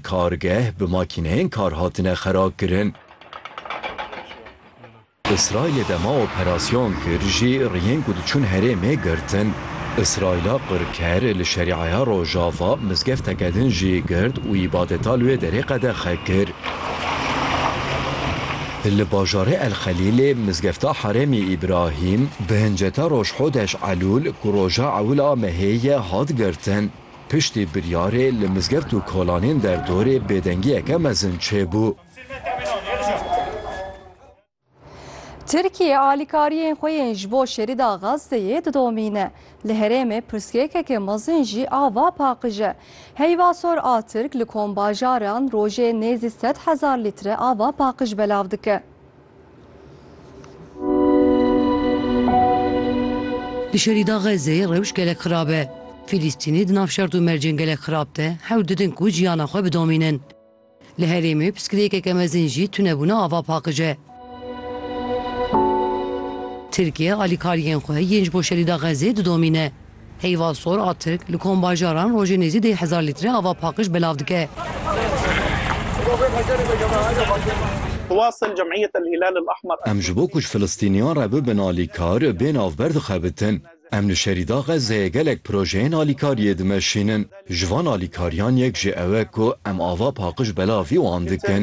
Kargeh bi makîneyên kar hatine xerabkirin. Îsraîlê dema operasyon kir jî riyên ku diçûn herêmê girtin. Îsraîla qirker li Şerîaya Rojava mizgefteke din jî girt û îbadeta li wê derê qedexe kir. Li bajarê El Xelîlê mizgefta Herêmî Îbrahîm bi hinceta roj Hodeş Elûl ku roja ewil a mehê ye hat girtin. Piştî biryarê li mizgeft û kolanên derdorê bêdengiyeke mezin çêbû. Tirkiye alîkariyên xwe yên ji bo şerîda Gazeyê didomîne. Li herêmê pirsgirêkeke mezin jî ava paqij e. Heyva sor a Tirk li kombajaran rojê nêzî sed hezar lître ava paqij belav dike. Li şerîda Xezzeyê rewş gelek xirab e. Fîlîstînê di nav şert û mercên gelek xirab de hewl didin ku jiyana xwe bidomînin. Li herêmê piskirêkeke mezin jî tunebûna ava paqij e. Tirkiye alîkariyên xwe yên ji bo şerîda Xezzeyê didomîne. Heyva sor a Tirk li kombajaran rojê nêzî dê hezar lître ava paqij belav dike. Em ji bo ku ji Filistîniyan re bibin alîkar, bê navber dixebitin. Em li Şerîda Xezzeyê gelek projeyên alîkariyê dimeşînin. Ji van alîkariyan yek jî ew e ku em ava paqij belavî wan dikin.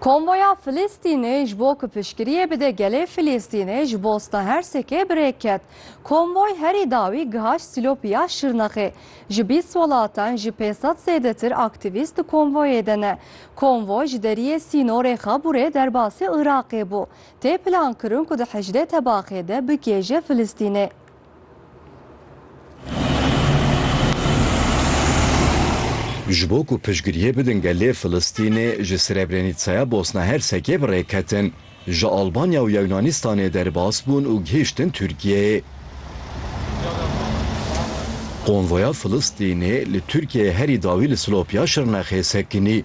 Konvoya Filistînê ji bo ku piştgiriyê bide gelê Filistînê ji Bosna Hersekê bi rê ket. Konvoy herî dawî gihaşt Sîlopî ya Şirnexê. Ji bîst welatan ji pênc sed zêdetir aktîvîst di konvoyê de ne. Konvoy ji deriyê sînorê Xaburê derbasî Iraqê bû. Tê plankirin ku di hejdeh tebaxê de bigihêje Filistînê. Ji bo ku piştgiriyê bidin gelê Filistînê ji Srebrenîtsaya Bosna Hersekê bi rê ketin, ji Albanya û Yewnanîstanê derbas bûn û gihîştin Tirkiyeyê. Konvoya Filistînê li Tirkiyeyê herî dawî li Silopya Şirnexê sekinî.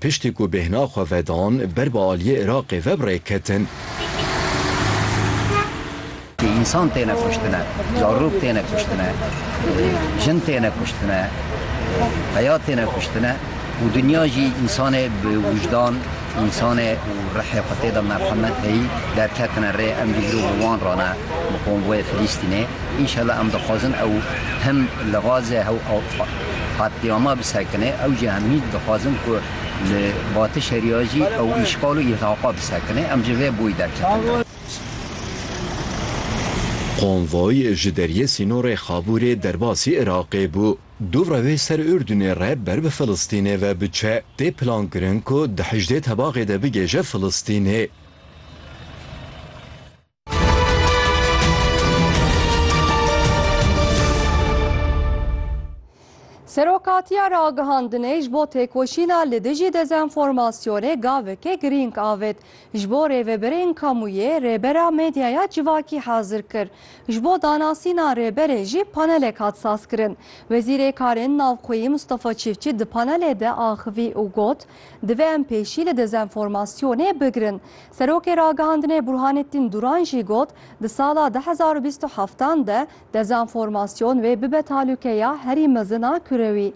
Piştî ku bêhna xwe vedan, ber bi aliyê Iraqê ve bi rê ketin. Ti însan têne kuştine, zarok têne kuştine, jin têne kuştine, peya têne kuştine û dinya jî însanê bi wijdan, însanê û rihê xwe tê de merhemet heyî derketine rê. Em dê îro bi wan re ne, bi konvoyê Filîstînê. Înşela em dixwazin ew him li Gazê hew Qetlîama bi sekine ew jî em hîn dixwazin ku li Batı Şeriya jî ew îşxal û îrhaq'a bi sekine em ji vê boy derketin. Konvoy ji deriyê sînorê Xabûrê derbasî Iraqê bû. Dû rewê ser Urdunê re ber bi Filistînê ve biçe. Tê plankirin ku di hejdê tebaxê de bigêje Filistînê. Serokatiya ragihandinê ji bo têkoşîna li dijî dezenformasyonê gaveke girîng avêt. Ji bo rêveberên kamûyê rêbera medyaya civakî hazir kir. Ji bo danasîna rêberê jî panelek hat sazkirin. Wezîrê Karên Navxweyî Mustafa Çîfçî di panelê de axivî û got, Divê em pêşî li dezenformasyonê bigirin. Serokê Ragihandinê Burhanettin Duran jî got, di sala du hezar û bîst û heftan de dezenformasyon wê bibe talûkeya herî mezin a kurewî.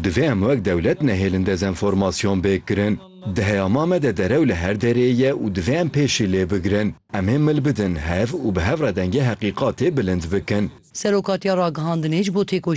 Divê em wek dewlet nehêlin dezenformasyon bêk kirin. Diheya ma me de derew li her derê ye û divê em pêşî lê bigirin. Em ê mil bidin hev û bi hev re dengê heqîqatê bilind bikin. Serokatiya Ragihandinê ji bo têkoşîna